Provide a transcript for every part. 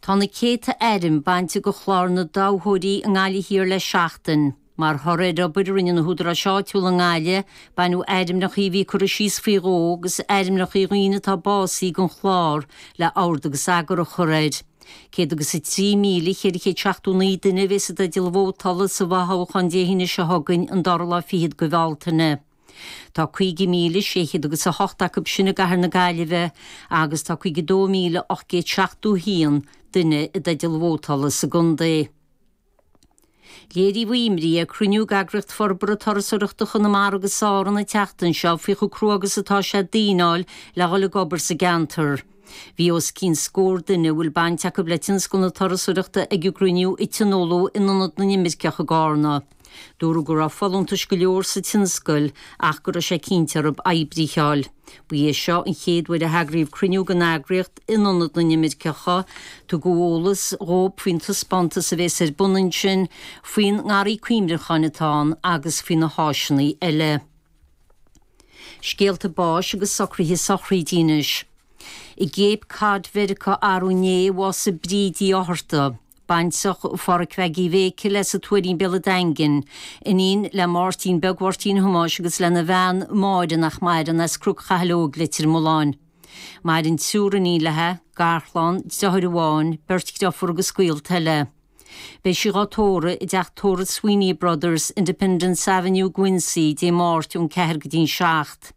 Tá na céadta ainm bainte de chlár na dtoghthóirí i nGaillimh Thiar le seachtain. Mar thoradh ar obair a rinne na húdaráis áitiúla i nGaillimh, baineadh ainmneacha a bhí curtha síos faoi dhó agus ainmneacha daoine atá básaithe den chlár le ord agus eagar a chur air. Céad agus a trí míle, ceithre chéad seachtó naoi duine a bheidh i dteideal vótála sa bhfothoghchán Dé hAoine seo chugainn, an dara lá fichead de Bhealtaine. Tá caoga míle sé chéad agus a hocht acu sin i gCathair na Gaillimhe agus tá caoga dó míle ocht gcéad seachtó a haon duine i dteideal vótála sa gcontae. Léiríodh imní ag cruinniú ag Eagraíocht Forbartha Turasóireachta Chonamara agus Árann an tseachtain seo faoi chomh crua agus atá sé daoine a fháil le dhul ag obair sa gceantar. Bhí os cionn scór duine a bhfuil baint acu le tionscal na turasóireachta ag an gcruinniú a tionóladh in Ionad na nImirceach i gCarna. Dúradh go raibh folúntais go leor sa tionscal ach go raibh sé cinnte orthub oibrithe a fháil. Ba é seo an chéad uair a eagraíodh cruinniú den eagraíocht in Ionad na nImirceach. Tugadh eolas dhób faoin taispeántas a bhéas ar bun ansin, faoin ngarraí cuimhneacháin atá ann agus faoi na háiseanna eile. Scéalta báis agus socruithe sochraide anois i gCape Cod Mheiriceá arú inné a bhásaigh Bríd Uí Fhátharta. Baintreach Pháraic Mheaig Uí Mhéicil sa Tuairín, Béal an Daingin. Iníon le Máirtín Beag Mháirtín Thomáis agus lena bhean Máire, nach maireann, as Cnoc Chathail Óig, Leitir Mealláin. Maireann triúr iníon leithe, garchlann, deartháir amháin, beirt driofúr agus gaolta eile. Beidh sí dhá tórramh i dteach tórraimh Sweeney Brothers, Independence Avenue, Quincy, Dé Máirt ón ceathair go dtí'n seacht.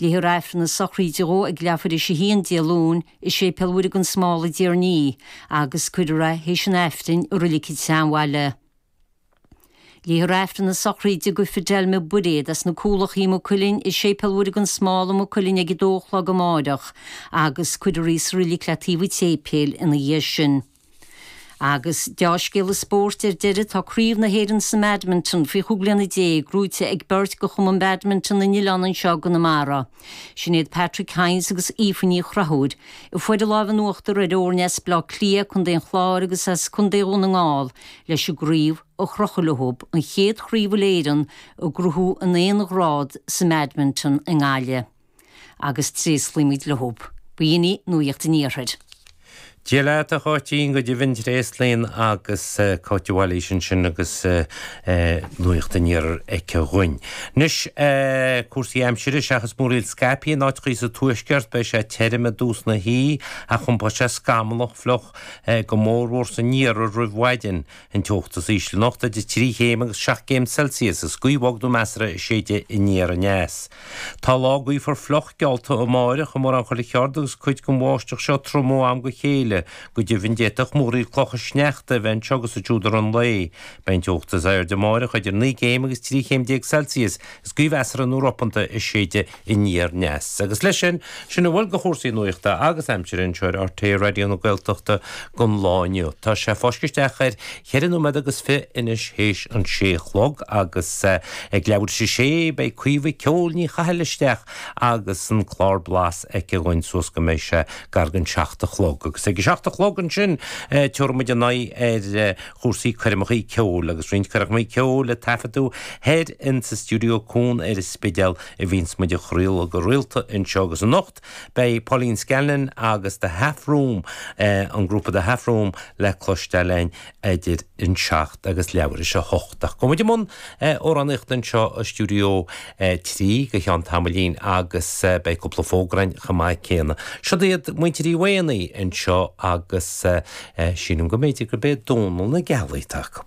Léifear Aifreann na sochraide dhó ag leathuair théis a haon Dé Luain i Séipéal Mhuire Gan Smál i dTír an Fhia agus cuirfear é théis an Aifrinn i Reilig an tSeanbhaile. Léifear Aifreann na sochraide do Fidelma Bairéad as na Cúlachaí Maigh Cuilinn i Séipéal Mhuire Gan Smál i Maigh Cuilinn ag a dó a chlog amáireach agus cuirfear í sa reilig le taobh an tséipéil ina dhiaidh sin. Agus dea-scéala spóirt ar deireadh, tá Craobh na hÉireann sa mBadminton faoi chúig bliana déag gnóite ag beirt de Chumann Badminton na nOileán anseo i gConamara, sin iad Patrick Hynes agus Aoife Ní Chonchúir. Fuaireadar lámh in uachtar ar fhoirne as Baile Átha Cliath, Contae an Chláir agus as Contae Dhún na nGall leis an gcraobh a chrochadh leo, an chéad chraobh Uile-Éireann a ghnóthú in aon ghrád sa mBadminton i nGaillimh. Agus tréaslaímid leo. B'in í nuacht an iarthair. Dia leat, a Cháitín. Go deimhin, tréaslaíonn agus Cáit Uí Mhailís ansin agus nuacht an iarthair aici dhúinn. Anois, cúrsaí aimsire. Seachas múraíl scaipthe in áiteachaí sa tuaisceart, beidh sé tirim i dtús na hoíche ach iompóidh sé scamallach fliuch go mórmhór san iarthar roimh mhaidin. An teocht is ísle anocht idir trí chéim agus seacht gcéim Celsius, is gaoth bhog nó measartha a séidfidh aniar aneas. Tá lá gaofar fliuch geallta amárach i mórán chuile cheard agus cuid den bháisteach seo trom ó am go chéile. Go deimhin d'fhéadfadh múraíl clocha sneachta a bheith anseo agus ansiúd i rith an lae. Beidh an teocht is airde amárach idir naoi gcéim agus trí chéim déag Celsius, is gaoth mheasartha nó ropánta a séidfidh aniar aneas. Agus leis sin, sin a bhfuil de chúrsaí nuachta agus aimsire anseo ar RTÉ Raidió na Gaeltachta don lá inniu. Tá sé ag fáisceadh isteach ar cheithre nóiméad agus fiche anois théis an sé a chlog agus ag leathuair théis a sé beidh Caoimhe 'Ceol' Ní Chathail isteach agus an clár Blas aici dhúinn suas go mbeidh sé gar don seacht a chlog. Agus ag a seacht a chlog ansin tabharfaidh muid ár n-aghaidh ar chúrsaí coirmeacha ceoil agus roinnt coirmeacha ceoil a taifeadadh thoir insa Stiúideo Cuan ar an Spidéal. Bhíonns muid a chraoladh go rialta anseo agus anocht beidh Pauline Scanlon agus The Half Room, an grúpa The Half Room, le cloisteáil againn idir an 7 agus leathuair théis a 8. Ach gabhfaidh muid i mbun amhránaíochta anseo i Stiúideo 3 go cheann tamaillín agus beidh cúpla fógra againn chomh maith céanna. Siod iad Muintir Uí Mhaonaigh anseo agus sílim go mb'fhéidir gurb é Dónall na Gealaí atá acu.